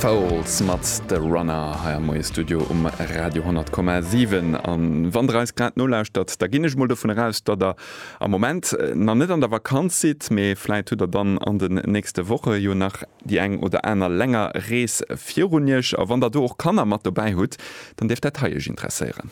D'Fowls mat The Runner hei am Moiestudio um Radio 10,7. An wann der eis grad nolauschtert, da ginn ech mol dovun eraus, datt der am Moment nach net an der Vakanz sidd, mee vläit hutt der dann an den nächste Woche jo nach déi eng oder aner länger Rees virun iech. A wann der do och Kanner mat dobäi hutt, dann dierft dat hei iech interesséieren.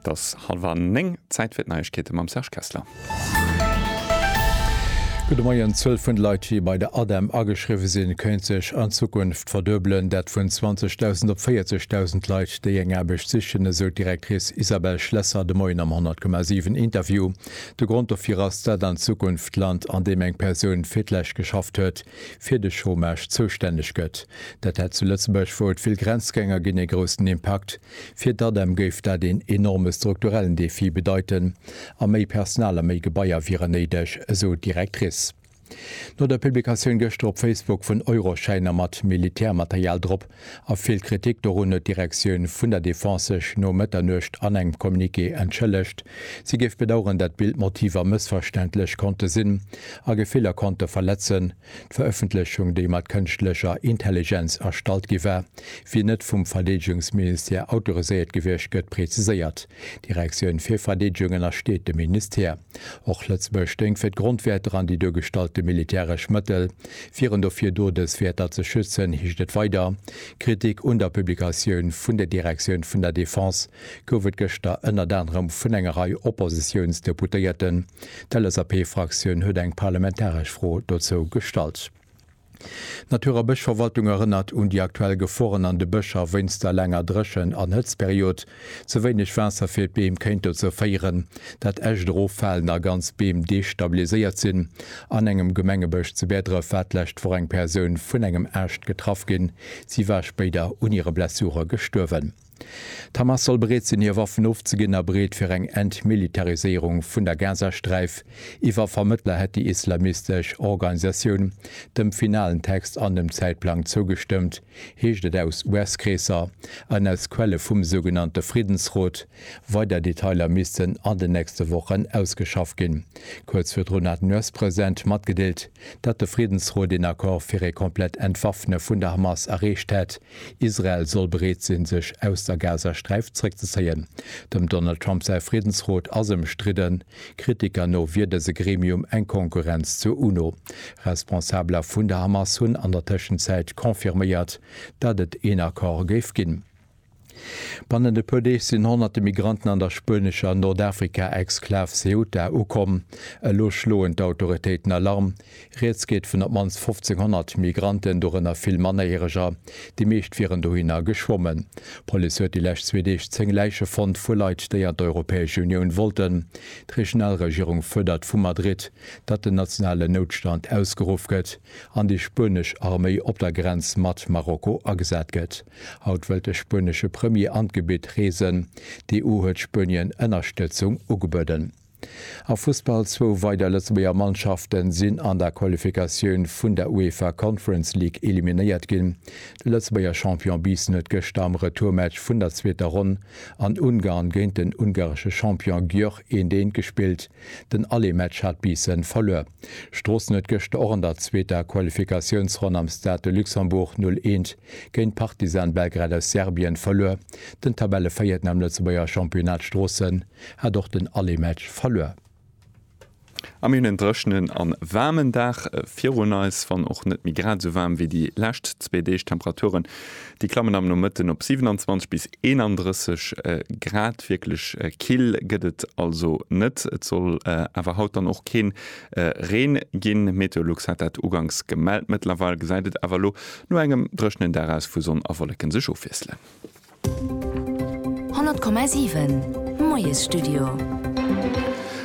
Et ass hallwer 9, Zäit fir d'Neiegkeete mam Serge Kessler. Gudde Moien, D'Zuel vun Leit, déi bei der ADEM ageschriwwe sinn, kéint sech an Zukunft verduebelen. Dat vun 20.000 op 40.000 Leit, déi eng Aarbecht sichen, esou d'Directrice Isabelle Schlesser de Moien am 100,7 Interview. De Grond dofir ass, dat an Zukunft d'Land, an deem eng Persoun fir d'lescht geschafft huet, fir de Chômage zoustänneg gëtt. Dat hätt zu Lëtzebuerg, wou et vill Grenzgänger ginn, ee groussen Impakt. Fir d'ADEM géif dat een enorme strukturellen Defi bedeiten a méi Personal a méi Gebaier wieren néideg, esou d'Directrice. No der Publikatioun gëschter op Facebook vun Euroschäiner mat Militärmaterial drop a vill Kritik dorun huet d'Direktioun vun der Defense sech no Mëtternuecht an engem Communiqué entschëllegt. Si géif bedaueren, dat Bildmotiver mëssverständlech konnte sinn a Gefiller konnte verletzen. D'Verëffentlechung, déi mat kënschtlecher Intelligenz erstallt gi war, wier net vum Verdeedegungsministère autoriséiert gewiescht, gëtt preziséiert. D'Direktioun fir Verdeedegung ënnersteet dem Ministère. Och Lëtzebuerg stéing fir d'Grondwäerter an déi duergestallte militäresch Mëttel wieren dofir do, dës Wäerter ze schützen, heescht et weider. Kritik un der Publikatioun vun der Direktioun vun der Defense gouf et gëschter ënnert anerem vun enger Rei Oppositiounsdeputéierten. D'LSAP-Fraktioun huet eng parlamentaresch Fro dozou gestallt. D'Natur a Bëschverwaltung erënnert un déi aktuell Geforen an de Bëscher wéinst der laanger Dréchen an Hëtztperiod. Ze wéineg Waasser fir d'Beem kéint dozou féieren, dat Äscht eroffalen a ganz Beem destabiliséiert sinn. An engem Gemengebësch zu Bäerdref war d'lescht Woch eng Persoun vun engem Aascht getraff ginn. Si war spéider un hire Blessure gestuerwen. D'Hamas soll bereet sinn, hir Waffen ofzeginn a bereet fir eng Entmilitariséierung vun der Gazasträif. Iwwer Vermëttler hätt déi islamistesch Organisatioun dem finalen Text an dem Zäitplang zougestëmmt, heescht et aus US-Kreesser an aus Quelle vum sougenannte Friddensrot. Weider Detailer missten an den nächste Wochen ausgeschafft ginn. Kuerz virdrun hat den US-President matgedeelt, datt de Friddensrot een Accord fir ee komplett Entwaffne vun der Hamas erreecht hätt. Israel soll bereet sinn, sech aus der Gazasträif zréckzezéien. Dem Donald Trump säi Friddensrot ass ëmstridden. Kritiker no wier dëse Gremium eng Konkurrenz zur UNO. Responsabeler vun der Hamas hunn an der Tëschenzäit confirméiert, datt et een Accord géif ginn. Bannent e puer Deeg sinn honnerte Migranten an der spuenescher Nordafrika-Exklav Ceuta ukomm. Elo schloen d'Autoritéiten Alarm. Rieds geet vun op d'mannst 1.500 Migranten, dorënner vill Mannerjäreger. Déi meescht wieren dohinner geschwommen. D'Police huet déi lescht zwee Deeg zéng Läiche fonnt vu Leit, déi an d'Europäesch Unioun wollten. D'Regionalregierung fuerdert vu Madrid, datt den nationalen Noutstand ausgeruff gëtt an déi spuenesch Arméi op der Grenz mat Marokko agesat gëtt. Haut wëllt de spuenesche Premier an d'Gebitt reesen. D'EU huet Spuenien Ënnerstëtzung ugebueden. Am Fussball, Zwou weider Lëtzebuerger Mannschafte sinn an der Qualifikatioun vun der UEFA Conference League eliminéiert ginn. De Lëtzebuerger Champion Biissen huet gëschter am Retourmatch vun der zweeter Ronn an Ungarn géint den ungaresche Champion Győr eent eent gespillt. Den Allé-Match hat Biissen verluer. Stroossen huet gëschter och an der zweeter Qualifikatiounsronn am Stade de Luxembourg 0 eent géint Partizan Belgrad aus Serbien verluer. Den Tabelleveiierten am Lëtzebuerger Championnat Stroossen. hat och den alle Match verluer. A mir hunn en dréchnen a waarmen Dag virun eis, wann och net méi grad esou waarm wéi déi lescht zwee Deeg. D'Temperaturen, déi klammen am Nomëtten op 27 bis 31 Grad. Wierklech kill gëtt et also net. Et soll awer haut dann och kee Reen ginn. Meteolux hat dat uganks gemellt. Mëttlerweil gesäit et awer elo no engem dréchnen Dag aus, wou Sonn a Wolleke sech ofwiesselen. 100,7 Moiesstudio.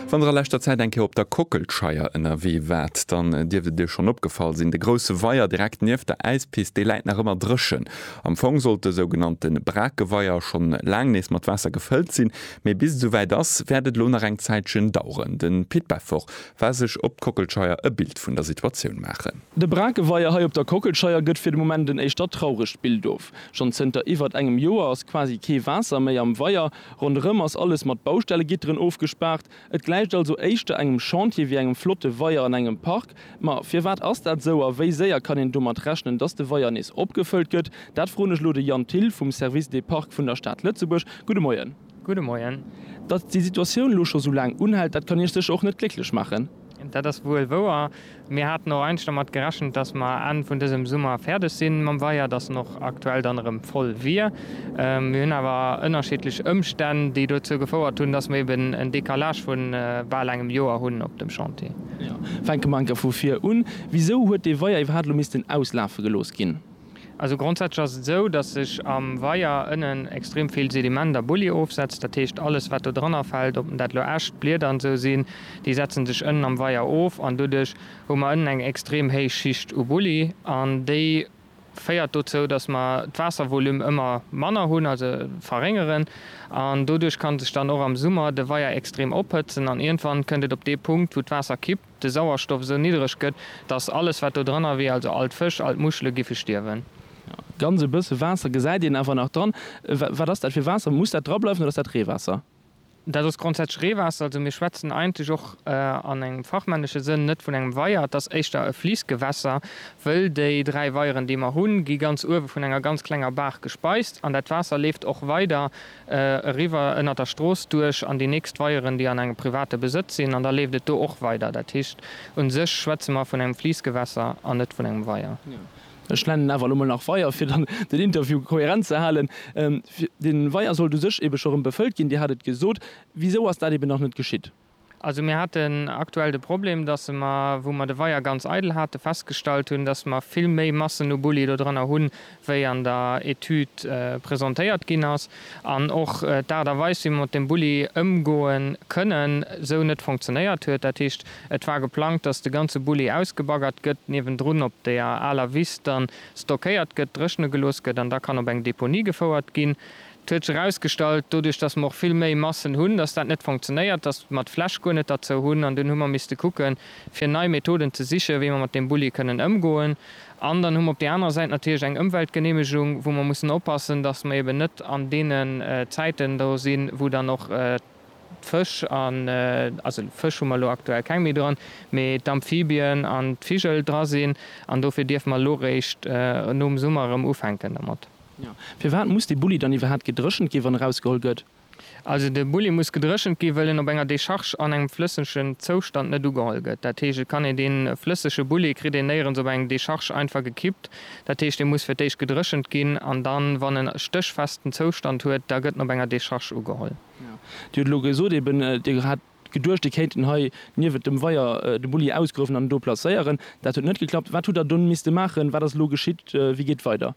Wann der a leschter Zäit eng Kéier op der Kockelscheier ënnerwee waart, dann dierft et iech schonn opgefall sinn, De grousse Weier direkt nieft der Äispist, dee läit nach ëmmer dréchen. Am Fong sollt de sougenannte Brakeweier schonn laang nees mat Waasser gefëllt sinn, mee bis et esouwäit ass, wäert et elo nach eng Zäitchen daueren. De Pit Beffort war sech op d'Kockelscheier e Bild vun der Situatioun maachen. De Brakeweier hei op der Kockelscheier gëtt fir de Moment en éischter trauregt Bild of. Schonn zënter iwwert engem Joer ass quasi kee Waasser méi am Weier. Ronderëm ass alles mat Baustellegitteren ofgespaart. Et gläicht also éischter engem Chantier wéi engem flotte Weier an engem Park. Ma firwat ass dat esou a wéi séier kann een domat rechnen, dass de Weier nees opgefëllt gëtt? Dat froen ech elo de Yann Thill vum Service des Parcs vun der Stad Lëtzebuerg. Gudde Moien. Gudde Moien. Datt déi Situatioun elo scho sou laang unhält, dat kann Iech sécher och net glécklech maachen. Dat ass wuel wouer. Mir haten och eigentlech dermat gerechent, datt mer Enn vun dësem Summer fäerdeg si mam Weier, datt en och aktuell dann erëm voll wier. Mir hunn awer ënnerschiddlech Ëmstänn, déi dozou gefouert hunn, datt mer eben en Decalage vu bal engem Joer hunn op dem Chantier. Fänke mer enker vu vir un. Wisou huet dee Weier iwwerhaapt elo missten auslafe gelooss ginn? Also grondsätzlech ass et esou, datt sech am Weier ënnen extrem vill Sediment a Bulli ofsetzt. Dat heescht, alles wat do dranner fält, ob dat elo Äscht, Blieder an esou sinn, déi setzen sech ënnen am Weier of an doduerch hu mer ënnen eng extrem héich Schicht u Bulli an déi féiert dozou, datt mer d'Waasservolume ëmmer manner hunn, also verréngeren an doduerch ka sech dann och am Summer de Weier extrem ophëtzen an iergendwann kënnt et op dee Punkt, wou d'Waasser kippt. de Sauerstoff esou niddreg gëtt, datt alles wat do dranner wier, also all d'Fësch, all d'Muschele giffe stierwen. Ganz e bësse Waasser gesäit een awer nach dran. Wat ass dat fir Waasser? Muss dat drableiwen oder ass dat Reewaasser? Dat ass grondsätzlech Reewaasser. Also mir schwätzen eigentlech och an engem fachmännesche Sënn net vun engem Weier. Et ass éischter e Fliissgewässer, wëll déi dräi Weieren, déi mer hunn, gi ganz uewe vun enger ganz klenger Baach gespeist an dat Waasser leeft och weider eriwwer ënnert der Strooss duerch an déi nächst Weieren, déi an engem private Besëtz sinn, an da leeft et do och weider. Dat heescht, u sech schwätze mer vun engem Fliissgewässer an net vun engem Weier. Ech nennen awer elo mol nach Weier, fir dann den Interview kohärent ze halen. De Weier sollt u sech eebe scho rëm befëllt ginn, Dir hat et gesot. Wisou ass dat eeben nach net geschitt? Also mir haten aktuell de Problem, datt mer, wou mer de Weier ganz eidel hate, festgestallt hunn, datt mer vill méi Massen u Bulli do drënner hunn, wéi an der Etüd presentéiert ginn ass, an och d'Aart a Weis, wéi mer mat deem Bulli ëmgoe kënnen, esou net funktionéiert huet. Dat heescht, et war geplangt, datt de ganze Bulli ausgebaggert gëtt, niewendrun op deeër aler Wiss da stockéiert gëtt, dréchne gelooss gëtt an da kann op eng Deponie gefouert ginn. Et huet sech erausgestallt, doduerch datt mer och vill méi Massen hunn, datt dat net fonctionnéiert, datt mer d'Fläch guer net derzou hunn an dunn hu mer misste kucke fir nei Methoden ze siche wéi mer mat deem Bulli kënnen ëmgoen. An dann hu mer op där anerer Säit natierlech eng Ëmweltgeneemegung, wou mer mussen oppassen, datt mer eben net an deene Zäiten do sinn, wou dann och d'Fësch an, also Fësch hu mer elo aktuell keng méi dran, mee d'Amphibien an d'Vigel dra sinn an dofir dierfe mer elo réischt nom Summer erëm ufänken domat. Firwat muss de Bulli dann iwwerhaat gedréchent gi wann e rausgeholl gëtt? Also de Bulli muss gedréchent gi wëll en op enger Decharge an engem flëssegen Zoustand net ugeholl gëtt. Dat heescht et kann een deen flëssege Bulli kritt een néierens op eng Decharge einfach gekippt. Dat heescht dee muss fir d'éischt gedréchent ginn an dann wann en e stéchfesten Zoustand huet da gëtt en op enger Decharge ugeholl. Dir huet elo gesot eben dir hat geduecht dir kéinten hei niewent dem Weier de Bulli ausgruewen an en do placéieren. Dat huet net geklappt. Wat hutt der dunn misste maachen? Wat ass elo geschitt? Wéi geet weider?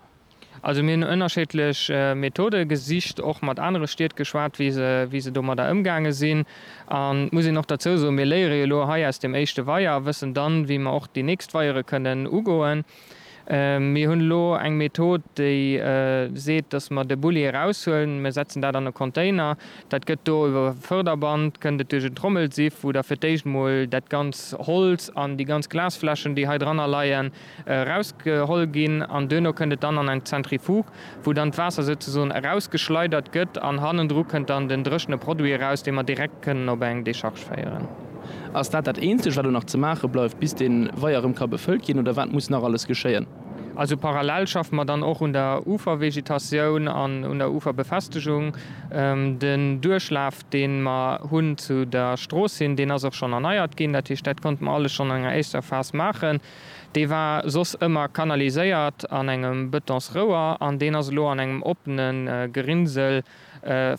Also mir hunn ënnerscheedlech Methode gesicht, och mat anere Stied geschwat, wéi se domadder ëmgaange sinn. An et muss een och derzou soen, mir léiere jo elo hei aus deem éischte Weier a wëssen dann, wéi mer och déi nächst Weiere kënnen ugoen. Mir hunn elo eng Method, déi seet, dass mer de Bulli eraushuelen, mir setzen dat an e Container, dat gëtt do iwwer e Förderband, kënnt et duerch en Trommelsiff, wou da fir d'éischt emol dat ganz Holz an déi ganz Glasfläschen, déi hei dranner leien, erausgeholl ginn an duerno kënnt et dann an eng Zentrifuge, wou dann d'Waasser souzesoen erausgeschleidert gëtt an hannendru kënnt dann den dréchene Produit eraus, dee mer direkt kënnen op eng Decharge féieren. Ass dat dat eenzegt, wat elo nach ze maache bleift, bis dee Weier erëm ka befëllt ginn, oder wat muss nach alles geschéien? Also parallel schaffe mer dann och un der Ufervegetatioun an un der Uferbefestegung. Den Duerchlaf, dee mer hunn zu der Strooss hin, deen ass och schonn erneiert ginn. Dat heescht, dat konnte mer alles schonn an enger éischter Phas maachen. Dee war soss ëmmer kanaliséiert an engem Betonsrouer an deen ass elo an engem oppene Gerinnsel,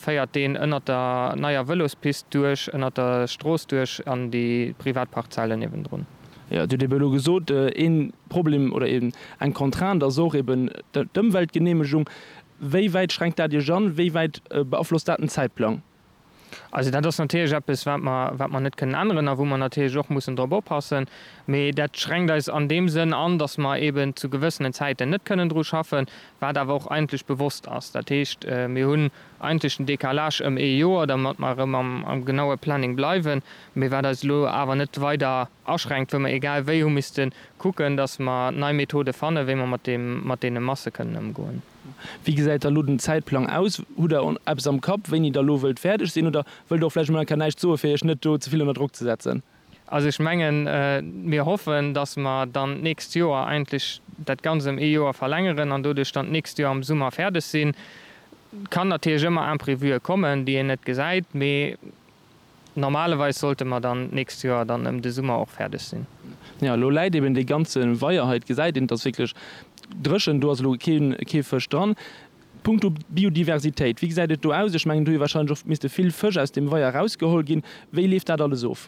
féiert deen ënnert der neier Vëlospist duerch, ënnert der Strooss duerch an déi privat Parzellen niewendrun. Jo, et huet ebe elo gesot, ee Problem oder eng Contrainte ass och eben d'Ëmweltgeneemegung. Wéi wäit schränkt dat Iech an? Wéi wäit beaflosst dat den Zäitplang? Also dat ass natierlech eppes, wat mer, wat mer net kënnen änneren a wou mer natierlech och mussen drop oppassen. Mee dat schränkt eis an deem Sënn an, datt mer eeben zu gewëssenen Zäiten net kënnen dru schaffen, wat awer och eigentlech bewosst ass. Dat heescht, mir hunn eigentlech den Décalage ëm ee Joer, domat mer erëm am, am genaue Planning bleiwen, mee wat eis elo awer net weider aschränkt, wou mer egal wéi hu misste kucken, datt mer nei Methode fannen, wéi mer mat deem, mat deene Masse kënnen ëmgoen. Wéi gesäit da elo den Zäitplang aus? Hutt Der eppes am Kapp, wéini Der elo wëllt fäerdeg sinn? Oder wëllt Der och vläicht emol enker näischt soen, fir Iech net do ze vill ënner Drock ze setzen? Also ech mengen, mir hoffen, dass mer dann d'nächst Joer eigentlech dat Ganzt ëm ee Joer verlängeren an doduerch dann d'nächst Joer am Summer fäerdeg sinn. Et kann natierlech ëmmer Imprévue kommen, déi een net gesäit, mee Normalerweis sollte mer dann d'nächst Joer dann ëm de Summer och fäerdeg sinn. Jo, elo läit eben dee ganze Weier hei, et gesäit een, et ass wierklech dréchen, do ass elo kee Fësch dran. Punkto Biodiversitéit, wéi gesäit et do aus? Ech mengen, et hu jo warscheinlech och misste vill Fësch aus deem Weier erausgeholl ginn. Wéi leeft dat alles of?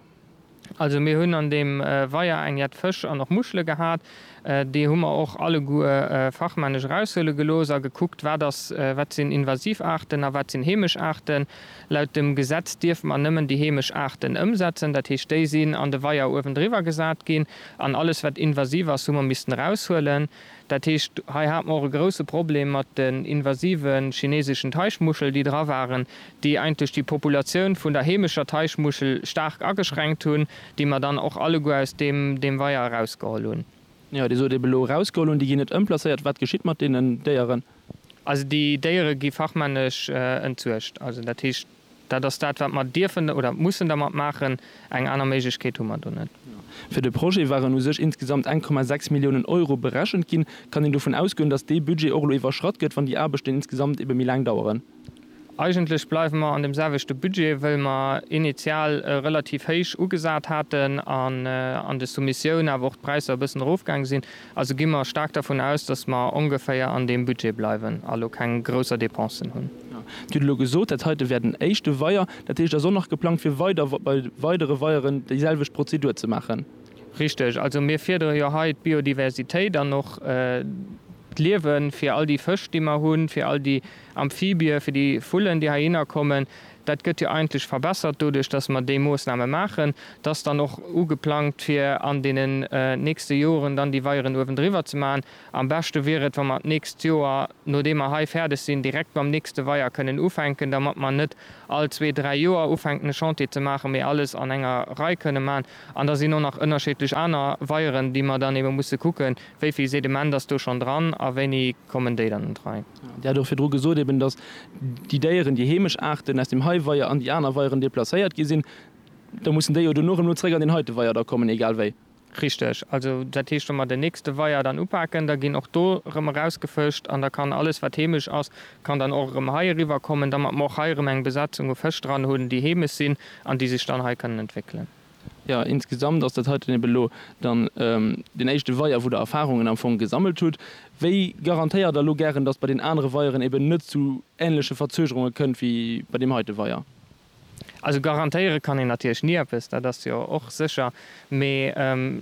Also mir hunn an deem Weier eng jett Fësch an och Muschele gehat. Déi hu mer och alleguer fachmännesch eraushuele gelooss a gekuckt, wat ass, wat sinn invasiv Aarten a wat sinn heemesch Aarten. Laut dem Gesetz dierfe mer nëmmen déi heemesch Aarten ëmsetzen. Dat heescht, déi sinn an de Weier uewendriwwer gesat ginn an alles, wat invasiv ass, hu mer missten eraushuelen. Dat heescht, hei hat mer och e grouse Problem mat den invasive chineseschen Teichmuschel, déi dra waren, déi eigentlech déi Populatioun vun der heemescher Teichmuschel staark ageschränkt hunn, déi mer dann och alleguer aus deem Weier erausgeholl hunn. Jo, Dir sot ebe elo erausgeholl hunn. Déi ginn net ëmplacéiert. Wat geschitt mat deenen Déieren? Also déi Déiere gi fachmännesch entsuergt. Also dat heescht, Dat ass dat, wat mer dierfen oder mussen dermat maachen. Eng aner Méiglechkeet hu mer do net. Fir de Projet waren u sech insgesamt eng Komma sechs Milliounen Euro berechent ginn. Kann een dovun ausgoen, datt dee Budget och elo iwwerschratt gëtt, wann déi Aarbechten insgesamt ebe méi laang daueren? Eigentlech bleiwe mer an deem selwechte Budget, wëll mer initial e relativ héich ugesat haten an an de Soumissioun awer och d'Präisser e bëssen erofgaange sinn. Also gi mer staark dervun aus, dass mer ongeféier an deem Budget bleiwen a lo keng grousser Dépensen hunn. Dir hutt elo gesot, dat heite wär den éischte Weier. Dat heescht, da ass och nach geplangt, fir weider bei weidere Weieren déiselwecht Prozedur ze maachen? Richteg. Also mir fiedere jo hei d'Biodiversitéit an och d'Liewe fir all déi Fësch, déi mer hunn, fir all déi Amphibie, fir déi Vullen, déi heihinner kommen. Dat gëtt jo eigentlech verbessert doduerch, dass mer déi Moosname maachen. Et ass dann och ugeplangt, fir an deenen nächste Joren dann déi Weieren uewendriwwer ze maachen. Am beschte wier et, wa mer d'nächst Joer, nodeem mer hei fäerdeg sinn, direkt mam nächste Weier kënnen ufänken, dermat mer net all zwee, dräi Joer ufänken, e Chantier ze maachen, mee alles an enger Rei kënnen maachen. An da sinn och nach ënnerscheedlech aner Weieren, déi mer dann ebe musse kucken, Wéi vill Sediment ass do schonn dran a wéini kommen déi dann an d'Rei? Dir hat och virdru gesot eben, datt déi Déieren, déi heemesch Aarten aus dem hei Weier an déi aner Weieren deplacéiert gi sinn, da mussen déi jo duerno erëm elo zréck an deen heite Weier da kommen, egal wéi. Richteg. Also dat heescht, wa mer den nächste Weier dann upaken, da ginn och do erëm erausgefëscht an da kann alles, wat heemesch ass, kann dann och erëm hei eriwwer kommen, damat mer och hei erëm eng Besetzung u Fësch dran hunn, déi heemesch sinn an déi sech dann hei kënnen entwéckelen. Jo, insgesamt ass dat heiten eben elo dann den éischte Weier, wou Der Erfahrungen am Fong gesammelt hutt. Wéi garantéiert Der elo gären, dass bei den anere Weieren eben net zu ähnleche Verzögerunge kënnt wéi bei deem heite Weier? Also garantéiere kann een natierlech ni eppes, dat ass jo och sécher. Mee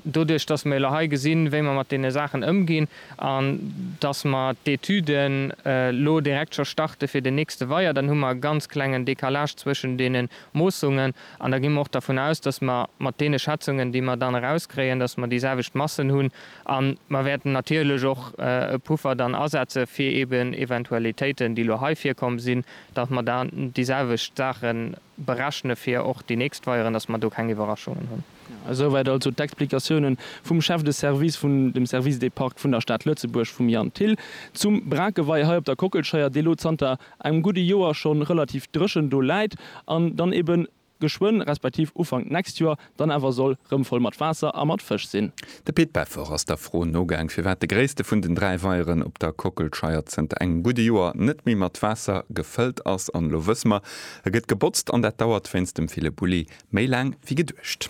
doduerch, dass mer elo hei gesinn, wéi mer mat deene Saachen ëmginn an dass mer d'Etüden elo direkt scho starte fir den nächste Weier, dann hu mer e ganz klengen Décalage zwëschen deene Moossungen An da gi mer och dervun aus, dass mer mat deene Schätzungen, déi mer dann erauskréien, dass mer déi selwecht Massen hunn. A mer wäerten natierlech och e Puffer dann asetze fir eeben Eventualitéiten, déi elo hei virkomm sinn, dass mer dann déi selwecht Saache berechne fir och déi nächst Veieren, dass mer do keng Iwwerraschungen hunn. Esouwäit also d'Explikatioune vum Chef de service vun dem Service des Parcs vun der Stad Lëtzebuerg, vum Yann Thill, zum Brakewei hei op der Kockelscheier, dee lo zanter engem gudde Joer schonn relativ dréchen do läit an dann eben geschwënn, respektiv Ufank d'nächst Joer dann awer soll rëm voll mat Waasser a mat Fësch sinn. De Pit Beffer ass der Fro nogaang, firwat de gréisste vun den dräi Weieren op der Kockelscheier zënter engem gudde Joer net méi mat Waasser gefëllt ass. An elo wësse mer, e gëtt gebotzt an dat dauert wéinst dem ville Bulli méi laang wéi geduecht.